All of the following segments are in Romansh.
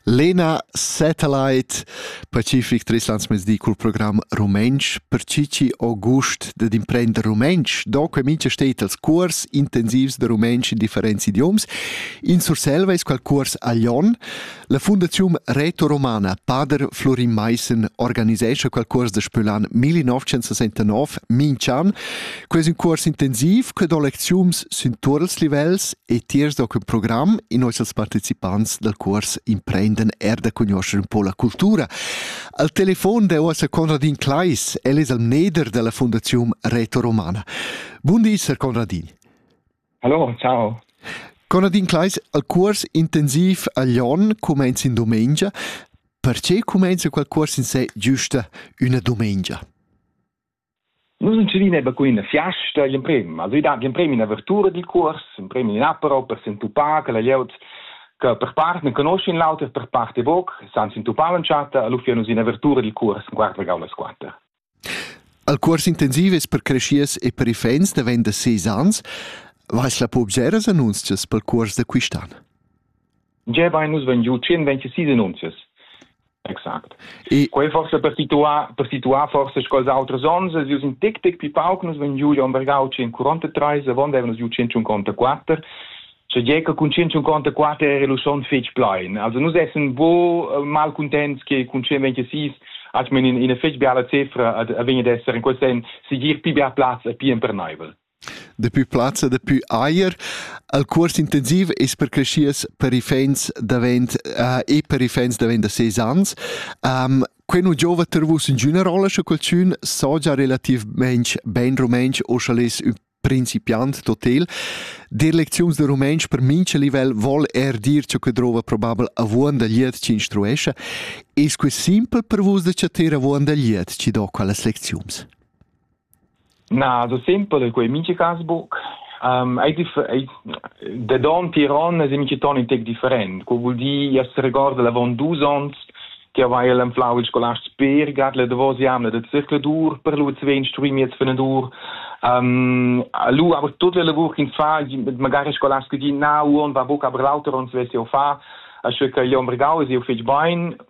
Lena Satellite Pacific Tris Landsmezdi cul program rumentsch per chi chi ho gust dad imprender rumentsch. Do que mincha stet als cuors intensivs da rumentsch in differents idioms. In Surselva es qual cuors a Lyon. La Fundaziun Reto Romana, pader Florin Maissen, organisescha qual cuors da Spülan 1969 minch'an. Quei es ün cuors intensiv che do lecziuns sün tuot ils livels e tiers do quel program in hoz als partecipants dal cuors Imprenden er da conoscer un po la cultura. Al telefon da uossa Conradin Kleis, el es al mneder della Fondazium Reto Romana. Bun di, Sir Conradin. Hallo, ciao. Conradin Kleis, al cuors intensiv a Lyon comenza in domenica. Perché comenza quel cuors in sé giusta una domenica? Nus entschevin eba cun ina fiasta gl'emprem. Also i dat gl'emprem in'avertura dil cuors, emprem in apero per s'entupar che la glieud che per part ne conoschin l'auter, per part e buc, san s'entupar l'entschatta, allura fia nus in'avertura dil cuors en quart regau las quater. El cuors intensiv es per creschiers e per iffaints davent da ses ans. Vais la po observas annunzias pel cuors da quist'an? gebain nus vegn giu 126 annunzias. Exact. E quei forse per situar per situar forse scols auters ons, els in tic tic pi pauc nus vegn giu Jon Bergau 143, avon avevano giu 154 Cioè gli che con 154 era lo son fetg plein. Also nus essen bo eh, mal contents che con 126 hat man in, in fetg biala cifra a, a venir d'essere in quel sen sigir pi bia plaz e pi empernaivel. Dapi plazza dapi Eier. El cuors intensiv es per creschias per iffaints davent e per iffaints davent da ses ans. Quai nu giouva ter vus ingüna rolla, scha qualchün saja relativmaing bain rumauntsch o scha'l es ün principiant totel. Dir lecziuns da rumauntsch per mincha livel voul eir dir cha que drouva probabel avuonda glieud chi instruescha. Es que simpel per vus da chattar avuonda glieud chi do quellas lecziuns? Na, so sempel co ei mincha cas buc. Um, ei dif- ei- da donn tier onn es ei mincha ton in tec different. Quo vul dir, jas regorda l'avon dus onns che aveva anflau il scolast per gat le davos jamna da zircladur per lu zwe instruir miez fenadur. Um, lu aber tut le lavur ins fa, magari scolast che di na uon va buca aber l'auter on svesse o fa, asche che Jon Bregau es eu fetg bein,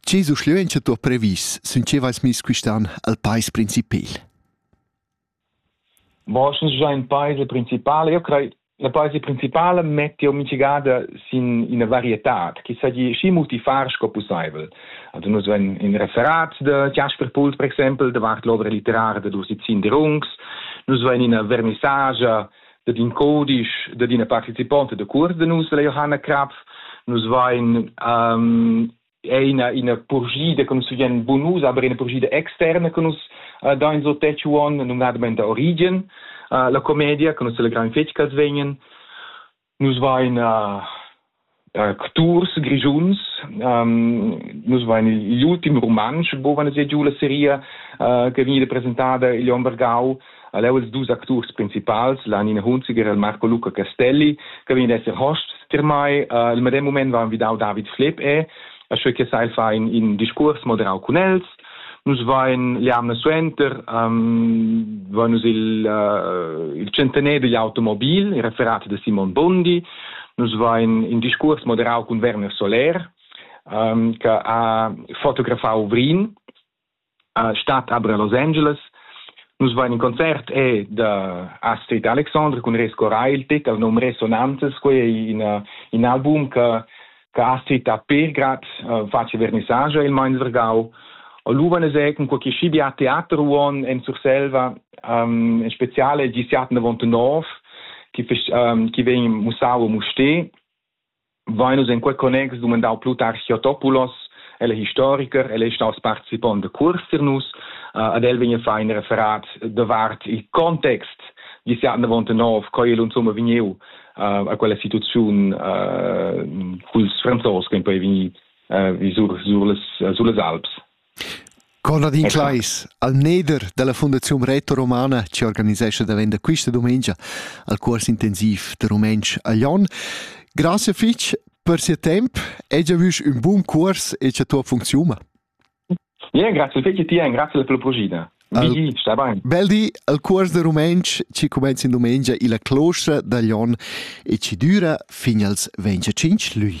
Che suschleuncha tuo previs sün che vais miss quist'an al pais principal? Bon, sche già in paese principale, io crei la paese principale mette o mitigada sin ina varietad che sa di schi multifar sco possibel. Also nus ven in referat de Jasper Pult per exempel, de Wart l'ovra literaria de Dusizin de Rungs, nus ven in vernissagia de din codisch de dina participonte de curs de nus de Johanna Krapf, nus vain um, è ina, ina purschida che nus vegn bonus, aber ina purschida externa che nus uh, da in so Techuan, numnadamente Origin, uh, la commedia, che nus celebraim fetg che vegnen. Nus vain uh, uh, tours grigiuns, um, nus vain gli ultim romansch, bovan se giù la seria uh, che veniva presentada igl Ombergau, Ha leu ils dus acturs principals, Lanin Hunziger e il Marco Luca Castelli, che vegn ad esser hosts per mai. Uh, il medem moment va envidau David Flepp e, asche che sai fa in, in discurs moderau cun els. Nus vain l'jamna suenter, um, va nus il, uh, il centener digl automobil, il referat de Simon Bondi. Nus vain in discurs moderau cun Werner Soler, um, che ha fotografau Vrin, a stat a Los Angeles. Nus vain in concert e da Astrid Alexandre cun Resco Railtic, el nom Resonantes, quei è in, in album che che Astrid ha per grad uh, face vernissage il Mainzergau. Oluvan es ecun co chi schi a teater uon en Surselva, um, in speziale gisiat 99, chi, um, chi vegn mussau muste vein nus en quei connex dumandau plu tar Theotopoulos, el è historiker, el è staus participont de curs für nus, uh, ad el vegn a fare in referat davart il context di si anna vonte nov, co el insomma vegniu uh, a quella situaziun uh, culs franzos che poi vegni uh, sur, sur, les, uh, sulle Alps. Conradin Kleis, almneder dalla Fundaziun Retoromana che organisescha davent da questa dumengia al cuors intensiv da rumentsch a Glion. Grazie fitg per sia temp e già vus un buon cuors e cha tua funziuma. Ja, grazie fitg ti e grazie per la progida. Al, sta bene. Bel di al cuors da rumentsch ci comenza in domenica illa closta da Glion e ci düra fin als 25 lui.